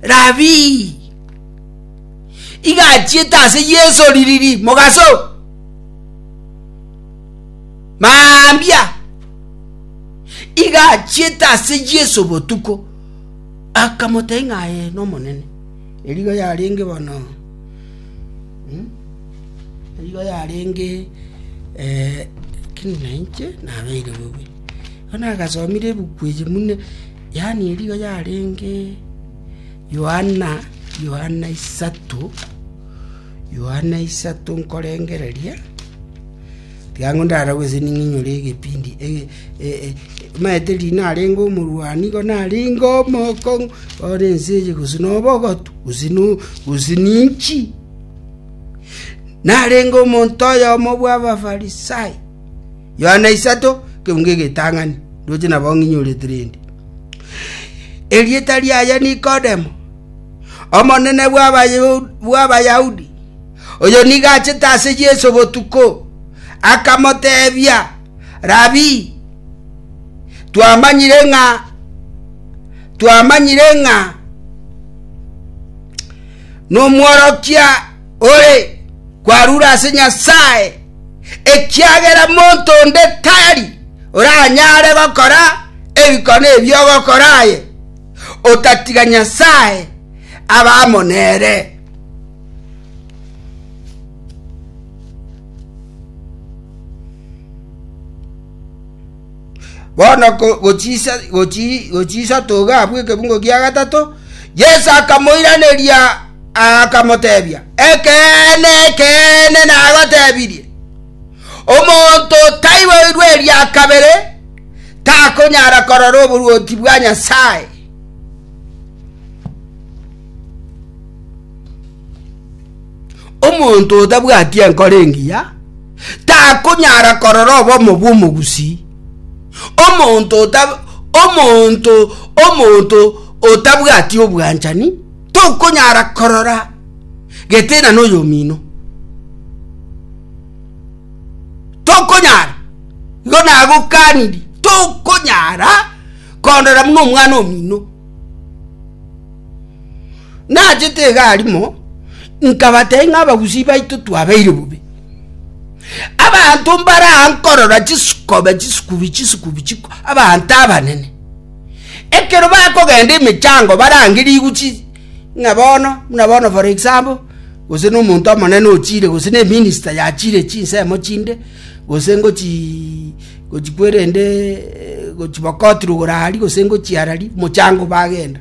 Rabii! Igachiete ase Yeso ririri mogaso mambia igachiete ase Yeso botuko akamotei ng'aye n'omonene erigo yarenge bono hmm? erigo yarenge eh, kini nainche nabeire bobe bono agasomire ebuku eyi mune Yaani erio yarenge Yohana, Yohana isato, Yohana isato nkorengereria, tiga ang'o ndaragwe ase ning'inyore egepindi ege- e- e- omanyete riria narenge omorwani igo narenge omokong'u bono ense eye gose na obogotu gose no gose na inchi, narenge omonto oyomo bw'Abafarisai. Yohana isato, keunga egetang'ani, ndoche nabo ng'inyorete rende. Erieta riaye Nikodemo, omonene bw'Abayahudi, oyo nigo achete ase Yeso botuko, akamotebia, Rabi, twamanyire ng'a twamanyire ng'a n'omworokia ore kwarure ase Nyasae, ekiagera monto onde tari oranyare gokora ebikone ebi ogokora aye, otatiga Nyasae aba amo nere. Bono gochiisa togaabwa ekebungo gia gatato, Yeso akamoiraneria, akamotebia, “Ekeene, ekeene, nagotebirie, Omonto otaiboirwe eria kabere takonyara korora oboruoti bwa Nyasae.” Omonto otabwati enkoro engiya takonyara korora obomo bw'omogusii. Omonto omonto omonto otabwati obwanchani tokonyara korora gete na noyomino tokonyara igo nagokaniri tokonyara korora buna omwana omino Nachete egari mo, nkabateebia ng'a abagusii baito twabeire bobe. Abanto mbare aa nkorora chisikobe chisikubi chisikubi chiko abanto abanene. Ekero bakogenda emechango barange rigu chi ng'a bono buna bono for example gose na omonto omonene ochiire gose na eminister yachiire chinsemo chinde gose ngochii gochi kwerende gochi bokoti rogoro aria gose ngochi arari mochango bagenda.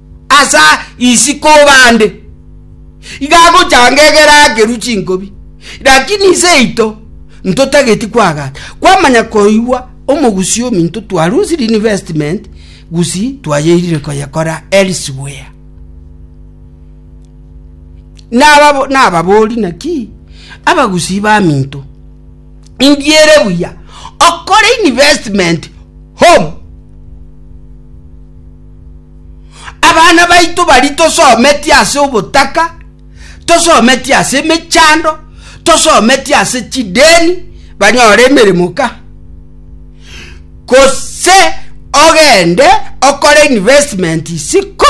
asa isiko bande, iga agochanga egere akerwe chinkobi, lakini iseito ntotageti kwagata, kwamanya koigwa omogusi ominto twarusire investment gusi twayeirire koyekora elsewhere. Nababo nababori naki abagusi baminto indiere buya okore investment home Abana baito bari tosometie ase obotaka, tosometie ase emechando, tosometie ase chideni banyore emeremo ka. Gose ogende okore investment isiko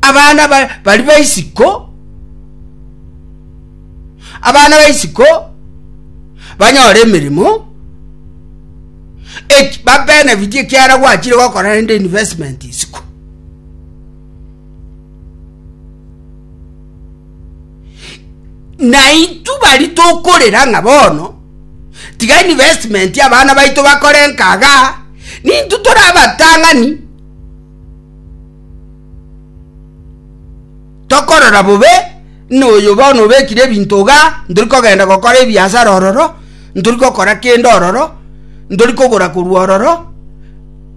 abana bari baisiko abana ba isiko banyore emeremo eki babenefiti ekiara gwachire gokora rende investment isiko na itu bari tokorera ng'a bono tiga investment abana baito bakore nkaga nintu tore abatang'ani Tokorora bobe noyo bono obekire ebinto iga, ntori kogenda gokora ebiasara ororo, ntori gokora kende ororo, ntori kogora korwa ororo,